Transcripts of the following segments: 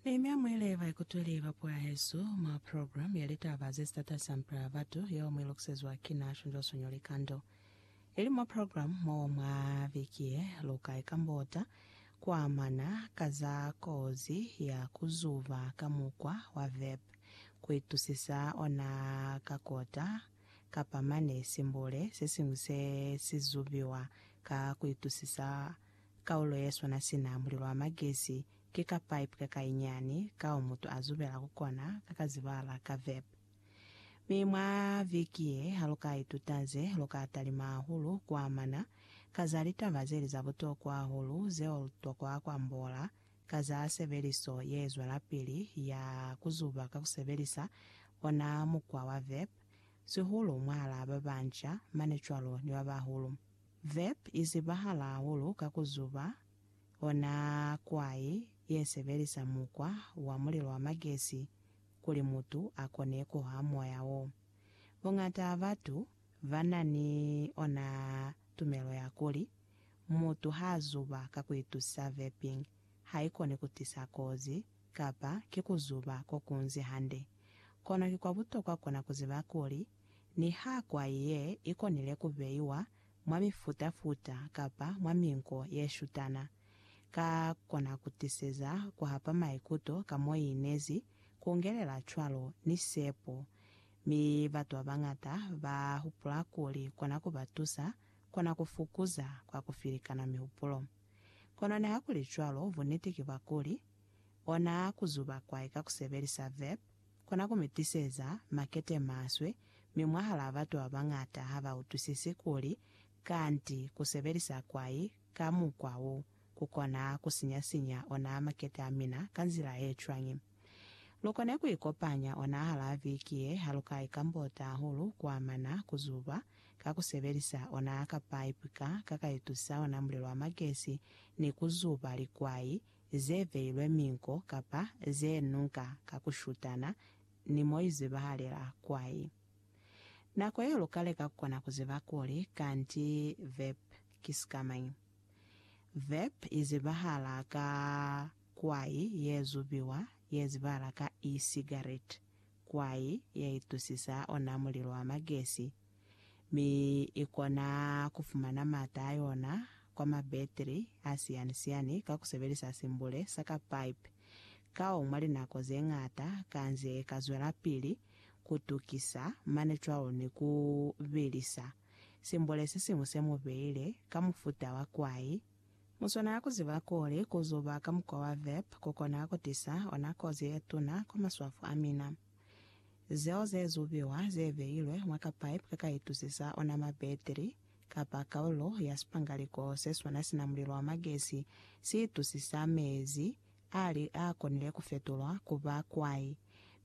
Nehemia muile ba ikutweli ba puo ya hesu mwa program ya litaba ze sitatasa mpela ya batu yeo mu ilokusezwa ki na shonjwa-sonyo likando ili mwa program mo mwa viki ye. Lu ka ikambota ku amana ka za kozi ya ku zuba ka mukwa wa vep ku itusisa ona ka kota kapa mane simbule se siñwi se si zubiwa ka ku itusisa Kaulo yeswana sina mulilo wa magesi ki ka pipe kakainyani kao mutu a zubela ku kona ka ka zibala ka vep. Mi mwa viki ye, haluka ituta ze lu ka talima hahulu ku amana ka za litaba zeli za butokwa hahulu zeo lu tokwa ku ambola ka za sebeliso ye zwelapili ya ku zuba ka ku sebelisa ona mukwa wa vep, sihulu mwahalaa ba banca, mane cwalo ni ba bahulu. Verb i zibahala hahulu ka ku zuba, ona kwai ye sebelisa mukwa wa mulilo wa magesi kuli mutu a kone ku ha moya wo. Buñata ha batu ba na ni ona tumelo ya kuli, mutu ha zuba ka ku itusa verping, ha i koni ku tisa kozi, kapa ki ku zuba ko kunzi hande. Kono ki kwa butokwa ku na ku ziba kuli, Niha kwai ye i konile ku beiwa mwa mifuta-futa kapa mwa minko ye shutana, ka kona ku tiseza ku hapa maikuto ka mo i inezi, ku ngelela cwalo ni sepo, mi batu ba bañata ba hupula kuli kona ku ba tusa, kona ku fukuza kwa ku filikana mihupulo. Kono nihakulicwalo, buniti ki bwa kuli, ona ku zuba kwai ka ku sebelisa verb, Kona ku mi tiseza makete maswe, mi mwahalaa batu ba bañata ha ba utwisisi kuli kanti ku sebelisa kwai ka mukwa wo ku kona ku sinya-sinya ona makete a mina ka nzila ye cwañi. Lu kone ku ikopanya onahalaa viki ye ha lu ka ikambota hahulu ku amana ku zuba ka ku sebelisa ona ka paipi ka ka ka itusa ona mulilo wa magesi ni ku zuba likwai ze beilwe minko kapa ze nunka ka ku shutana ni mo i zibahalela kwai. Nako yeo lu ka leka ku kona ku ziba kuli kanti verb ki sikamañi. Verb i zibahala ka kwai ye zubiwa ye zibahala ka e-cigarette, kwai ye itusisa ona mulilo wa magesi mi i kona ku fumana maata a yona kwa mabetri a siyani-siyani ka ku sebelisa simbule sa ka pipe. Kao mwa linako ze ñata ka nze ka zwelapili ku tukisa mane cwalo ni ku bilisa simbule se siñwi se mu beile ka mufuta wa kwai. Mu swanela ku ziba kuli ku zuba ka mukwa wa vape ku kona ku tisa ona kozi ye tuna kwa maswafo a mina. Zeo ze zubiwa ze beilwe mwa ka pipe ka ka itusisa ona mabetri, kapa kaulo ya sipangaliko se swana sina mulilo wa magesi si itusisa mezi a li a konile ku fetulwa ku ba kwai,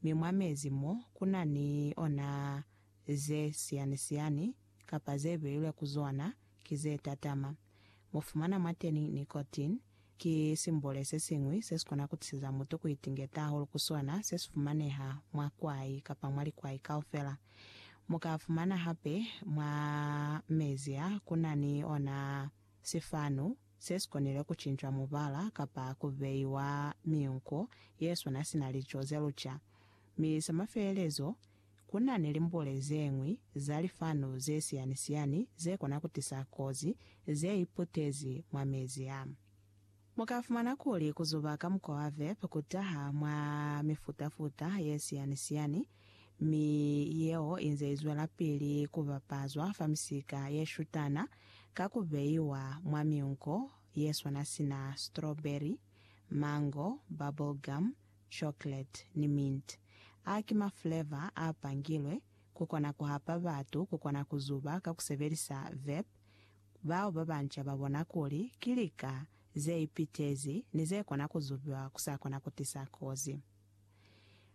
mi mwa mezi mo ku na ni ona ze siyani-siyani kapa ze beilwe ku zona ki ze tatama. Mu fumana mwateni nicotine. Ki simbole se siñwi se si kona ku tisiza mutu ku itingeta hahulu ku sona, se si fumaneha mwa kwai kapa mwa likwai kaufela. Mu ka fumana hape mwa mezi a ku na ni ona sifanu se si konile ku cincwa mubala kapa ku beiwa miunko ye sona sina lico ze luca. Mi sa mafelelezo, Ku na ni limbule ze ñwi za lifanu ze siyani-siyani ze kona ku tisa kozi ze iputezi mwa mezi a. Mu ka fumana kuli ku zuba ka mukwa wa vapor ku taha mwa mifuta-futa ye siyani-siyani, mi yeo i nze i zwelapili ku bapazwa fa misika ye shutana ka ku beiwa mwa miunko ye swana sina strawberry, mango, bubble gum, chocolate ni mint. A ki ma flavor a pangilwe ku kona ku hapa batu ku kona ku zuba ka ku sebelisa vape. Bao ba banca ba bona kuli ki lika ze ipitezi ni ze kona ku zubiwa ku sa kona ku tisa kozi.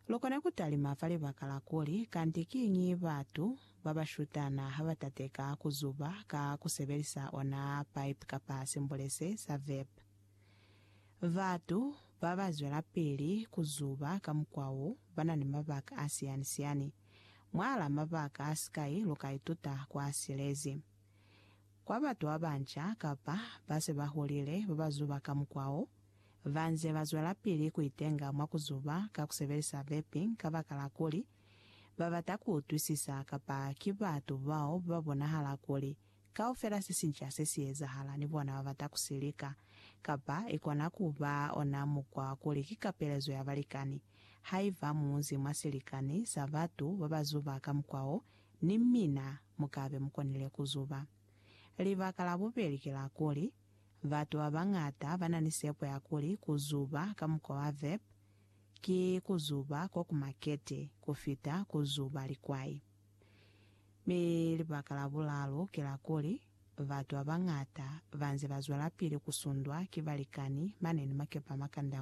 Lu kone ku talima fa libaka la kuli kanti kiñi batu ba ba shutana ha ba tateka ku zuba ka ku sebelisa ona pipe kapa simbulese sa vape. Batu babazwelapili kuzuba ka mukwa wo bana ni mabaka a siyani-siyani. Mwala mabaka a sikai lukaituta kwa silezi. Kwa batu babanca kapa base baholile babazuba ka mukwa wo, banze bazwelapili kuitenga mwa kuzuba ka kusebelisa vaping kabakala kuli babata kuutwisisa kapa ki batu bao babonahala kuli Kaufela sesinca sesiyezahala ni bona babata kusilika, kapa ikona kuba ona mukwa kuli ki kapelezo ya balikani. Haiba munzi mwasilikani sa batu babazuba ka mukwa wo, ni mina mukabe mukonile kuzuba. Libaka labubeli ki la kuli, batu babañata bana ni sepo ya kuli kuzuba ka mukwa wa vep ki kuzuba kokumakete kufita kuzuba likwai. Mi libaka la bulalu ki la kuli, batu ba bañata ba nze ba zwelapili ku sundwa ki balikani mane ni makepa a makanda.